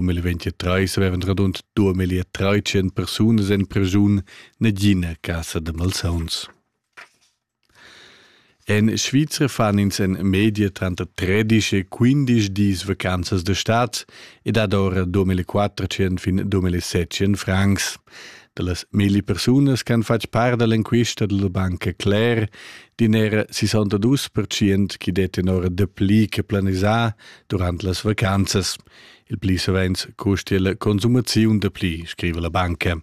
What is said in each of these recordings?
Um il 23 avevan radund 2300 persunas en pregiun negina casa da malsauns. En Svizra fan ins en media tranter 13 e 15 dis vacanzas de stat e dat ora 2400 fin 2700 francs. Da las milli persunas che han fatg part dall'enquista della banca Claire, din era 62% che detten ora de pli che planisà durant las vacanzas, Il pli savens custia la consumaziun da pli, scriva la banca.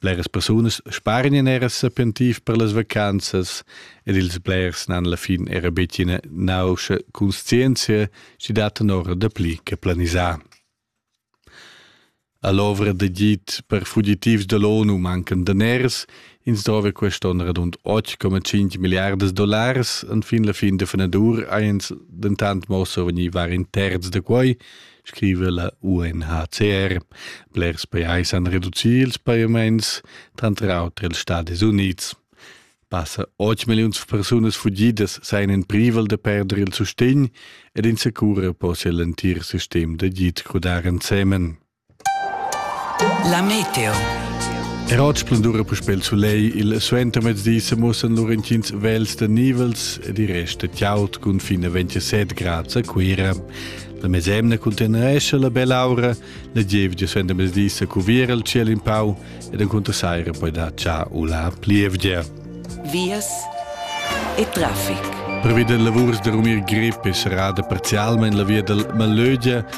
Bleras persunas sparen in era sapientiv per las vacanzas ed ils blers n'han la fin era betg ina nauscha conscienzia, si dat un'ora da pli che planisà. A l'ovra da git per fugitivs da l'ONU mancan daners, Ins drova quest onn radund 8,5 milliardas dollars. Enfin la fin da fenadur ins dentant mo survegnir var in terz da quai, scrive la UNHCR. Blers pajais han reducì ils pajaments, tranter auter ils Stati Unids. Passa 8 million persunas fugidas seien in privel da perder il sustegn ed in secura possia l'entir sistem da git crudar ensemen. La meteo. Er oggi splendura puspè il soleil, il suentermezdi se mussen lur intgins vels da nivels ed i resta tiaut cun fin a 27 grad a Cuira. La mesemna conteneresce la bella aura, la gievgia suentermezdi se cuviera il ciel in pau ed encunter saira poi da cià u la plievgia. Vias e traffic. Prevedere lavurs da rumir grippe sarà parzialmente la via del Malögia,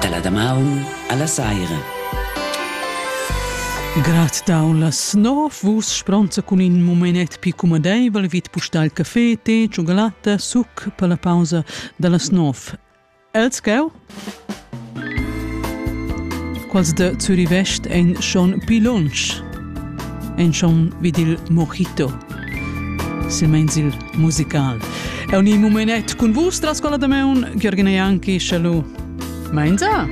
Dalla damaun alla saira. Grad daun las nov vus spronza cun in momenet più comodeivel vid pustal caffé, tè, cioccolata, suc per la pausa dallas nov. El tgau? Quals de Zurivest ein schon pli lunsch? Ein schon vid il mojito. Silmeins il musical. Eu ni mumenet cun vus tras quella de meun, Gheorghina Janki, schalu. Meinsa?